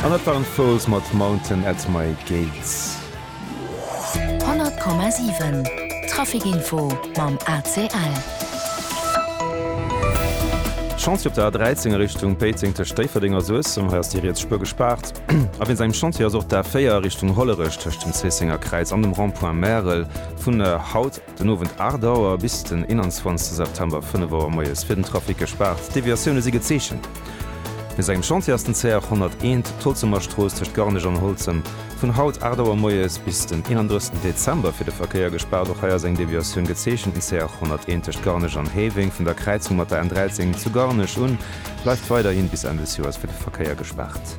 An dat waren d'Foals mat Mountain at my gates. 100,7 Trafic Info mam ACL. Chantier op der A13 a Richtung Péiteng tëscht Déifferdeng a Suessem, hei ass déi riets Spuer gespaart. A wéinst engem Chantier ass och d'A4 a Richtung Hollerech tëscht dem Zéissenger Kräiz an dem Rond-point Märel vun haut, Den Owend 8 Auer bis den 21 September 5 Auer moies fir den Trafic gespaart. Deviatioune si gezeechent. No sengem Chantier ass den CR 101, d'Holzemer Strooss tëscht Garnech an Holzem, vun haut 8 Auer moies bis den 31 Dezember fir de Verkéier gespaart. Och hei ass eng Deviatioun gezeechent. Den CR 101 tëscht Garnech an Héiweng, vun der Kräizung mat der N 13 zu Garnech un, bleift weiderhi bis Enn des Joers fir de Verkéier gespaart.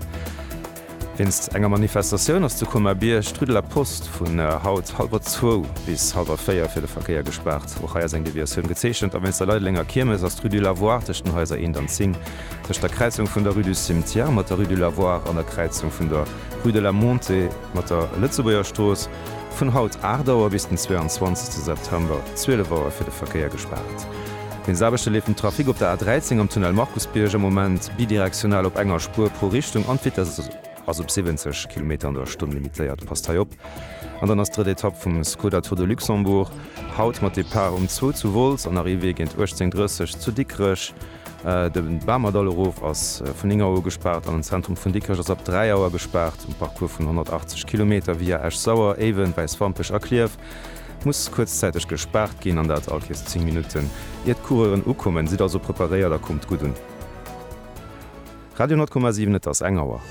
Wéinst enger Manifestatioun ass zu Colmar-Bierg d'Rue de la Poste vun haut hallwer zwou bis hallwer véier fir de Verkéier gespaart. Och hei ass eng Deviatioun gezeechent. A wéinst der Leidelenger Kiermes ass d'Rue du Lavoir tëscht den Haiser 1 an 10, tëscht der Kräizung vun der Rue du Cimetière mat der Rue du Lavoir an der Kräizung vun der Rue de la Montée mat der Lëtzebuerger Strooss, vun haut 8 Auer bis den 22 September 12 Auer fir de Verkéier gespaart. Wéinst Aarbechte leeft den Trafic op der A13 am Tunnel Markusbierg am Moment bidirektional op enger Spuer pro Richtung an d'Vitess ass op 70 Kilometer an der Stonn limitéiert. Passt hei op! An dann ass drëtt Etapp vum Skoda Tour de Luxembourg haut mat Depart um zwou zu Wolz an Arrivée géint 18.30 zu Dikrech. De Bamerdall erof ass vun 9 Auer u gespaart an den Zentrum vun Dikrech ass ab 3 Auer gespaart. Um Parcours vun 180 Kilometer via Esch-Sauer, Éiwen, Wäiswampech a Klierf muss kuerzzäiteg gespaart ginn an dat all Kiers 10 Minutten. Ier d'Coureuren ukommen, sidd also preparéiert a kommt gutt un. Radio 10,7 Et ass eng Auer.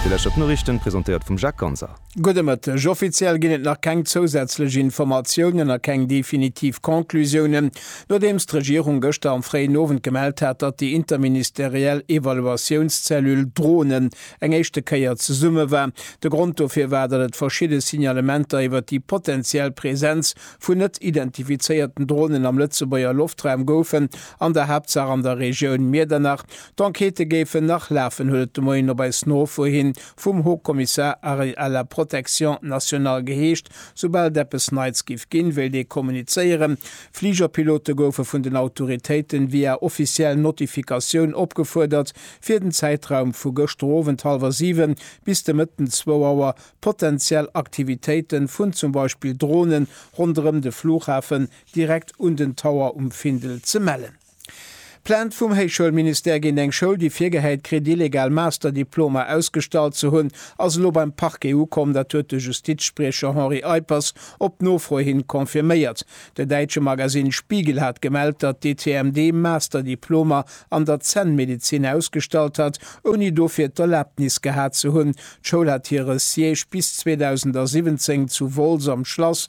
Dir lauschtert d'Noriichten, presentéiert vum Jacques Ganser. Gudde Mëtteg. Offiziell ginn et nach keng zousätzlech Informatiounen a keng definitiv Conclusiounen, nodeems d'Regierung gëschter am fréien Owend gemellt hat, datt déi interministeriell Evaluatiounszellule Drone eng éischte Kéier zesumme war. De Grond dofir war, datt et verschidde Signalementer iwwer déi potenziell Presenz vun net identifizéierten Dronen am Lëtzebuerger Loftraum goufen, an der Haaptsaach an der Regioun Miedernach. D'Enquêtë géifen nach lafen, huet et de Moien op eis Nofro hin vum Haut Kommissar à la protection nationale geheescht. Soubal et eppes Neits géif ginn, wéilt ee kommunizéieren. Fligerpilote goufe vun den Autoritéiten via offiziell Notifikatioun opgefuerdert, fir den Zäitraum vu gëschter Owend hallwer 7 bis de Mëtten 2 Auer potenziell Aktivitéite vun zum Beispill Drone ronderëm de Flughafen direkt un den Tower um Findel ze mellen. Plainte vum Héichschoulministère géint eng Schoul, déi virgehäit kritt, illegal Masterdiplomer ausgestallt ze hunn, ass elo beim Parquet ukomm. Dat huet de Justizspriecher Henri Eippers op Nofro hin confirméiert. De däitsche Magasinn Spiegel hat gemellt, datt d'ETMD Master-Diplomer an der Zännmedezin ausgestallt hat, ouni dofir d'Erlaabnis gehat ze hunn. D'Schoul hat hire Siège bis 2017 zu Wolz am Schlass